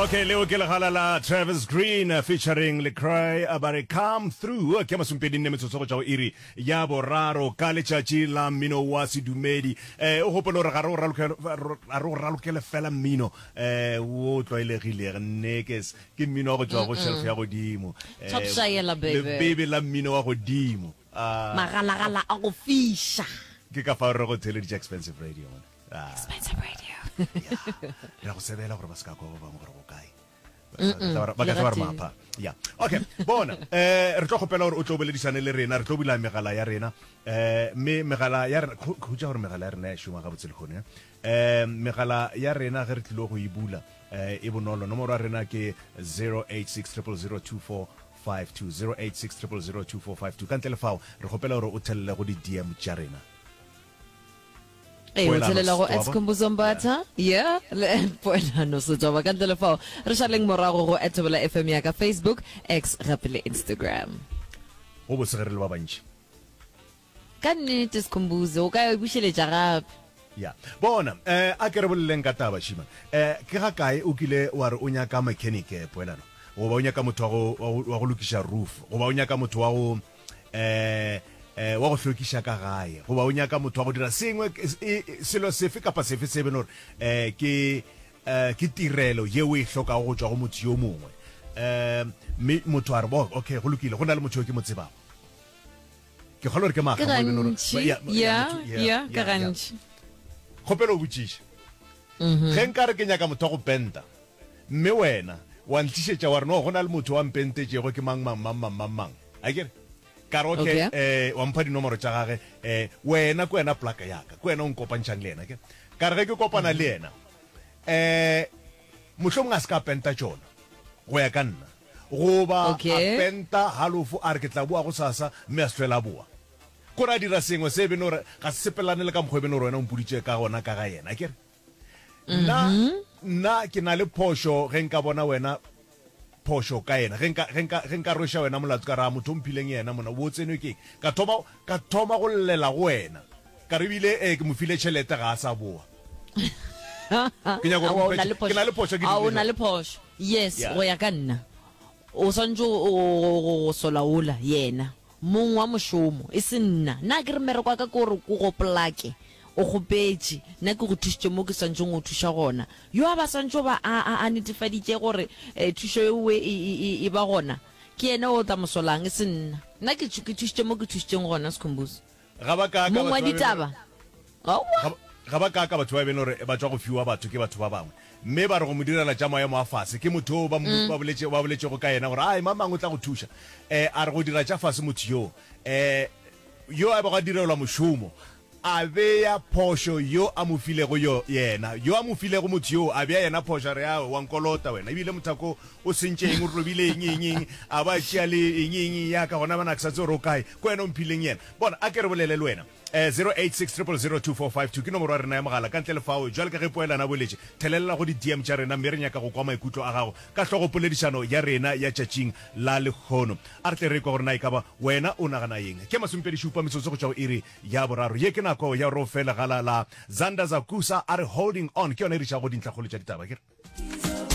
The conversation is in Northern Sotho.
okay leo ke legala la travis green uh, featuring lecry uh, ba re come through uh, ke masumpedi nne metsotso go tšwa go iri ya boraro ka letšatši la mmino wa sedumedi eh, o gopole gore ga re o ralokele- ro- ga re o ralokele fela mmino eh, wo o tlwaelegilego nekes ke mmino wa go tšwa go shelf ya godimo Eh, Top Shayela, baby. lebebe la mmino wa godimo Ah, magalagala a go fiša ke ka fa re go theleditše expensive radio mona. Expensive radio. re a go sebela gore ba se ka kwa ba bangwe gore go kae ba ka tla ba re mapha ya okay bona eh re tlo gopela gore o tlo boledisane le rena re tlo bula megala ya rena eh mme megala ya rena khutsa gore megala ya rena ya shuma ga botse le gone eh megala ya rena ge re tlilo go e bula eh e bonolo nomoro ya rena ke 08600024 0860002452 ka ntle le fao re gopela gore o thelele go di-dm tša rena ee o tshelela go escombuzombatha ye le poelano setšaba ka ntle le fao re šaleng morago go etobola fm ya ka facebook x gape le instagram go bosegere le ba bantši ka nnete sekhombuze o ka bušeletša gape ya bona um eh, a ke re boleleng ka taba shima um eh, ke ga kae o kile wa re o nyaka mechanic eh, poelano goba o nyaka motho wa go lokiša roof goba o nyaka motho wa go eh, eh, wa go hlwekiša ka gae goba o nyaka motho wa go dira sengwe selo sefe kapa sefe se beno gore eh, ke eh, ke tirelo ye o e hlokago go tswa go motho yo mongwe eh, mme eh, motho a re bo okay go lokile go na le motho yo ke mo tsebago ke kgolo gore ke maga kgopelo o botšiša ge nka re ke nyaka motho wa go penta Mme wena wa ntlišetša wa re no go na le motho wa mpentetšego ke mang mang mang mang mang mang. A ke re? Ka re ok Okay. eh wa mpha dinomoro tša gage eh wena ke wena plaka ya ka ke wena o nkopantšhang le yena ke ka re ge ke kopana le yena eh mohlomong a se ka penta tšona go ya ka nna goba a Okay. penta halofo a re ke tla boa go sasa mme a se tlhwela a boa kore a dira sengwe se e bene gore ga se sepelelane le ka mokgwa e bene gore wena o mpoditše ka gona ka ga yena a ke re? nna nna ke na le phošo ge nka bona wena phošo ka yena ge nka ge nka ge nka rwesha wena molato ka ra motho o mphileng yena mona bo tsenwe ke ka thoma ka thoma go llela go wena ka re bile eh, ke mo file tšhelete ga a sa boa ke nyaka Awa, o gore na le phošo. ke na le phošo ke Awa, o dirile na le jwang? phošo yes Yeah. go ya ka nna o swanetse go- go go- go sola ola yena Mong wa mošomo, e se nna. Na ke re mmereko wa ka ke gore ke go plake? O kgopetše. Nna ke go thušitše mo ke swanetšego go thuša gona. Yo a ba swanetše go ba a, a, a netefaditše gore e, thušo yeo e, e, e, e, e ba gona, ke yena yo o tla mosolang, e se nna. Nna ke, ke thušitše mo ke thušitšeng gona, Sikhumbuzo. Ga ba kaaka Mong wa batho ba beno ditaba. Aowa. ga, ga ba kaaka batho ba beno gore ba tšwa go fiwa batho ke batho ba bangwe mme ba re go mo direla tša maemo a fase ke motho o ba, mo- ba, boletše, ba boletšego ka yena gore a mang mang o tla go thuša um a re go dira tša fase motho yoo um yo a bego a direlwa mošomo a beya phošo yo a mo filego yo yena yo a mo filego motho yoo a beya yena phošo a re a wa nkolota wena ebile mothako o sentše eng o robile eng eng eng a ba tšea le eng eng ya ka gona bana ke sa tse gore o kae Ko wena o mphileng yena. Bona, a ke re bolele le wena. Eh, 0860002452 ke nomoro ya rena ya mogala. Ka ntle le fao, bjale ka ge poelano a boletše, thelelela go di-DM tša rena mme re nyaka go kwa maikutlo a gago ka hlogopoledišano ya rena ya tšatšing la lehono. A re tle re ekwe gore na e ka ba wena o nagana eng. Ke masomepedi-šupa metsotso go tšwa go iri ya boraro. Ye ke nako ya gore o fe legala la Zander Zakusa a re Holding On. Ke yona e re išago go dintlhakgolo tša ditaba, akere?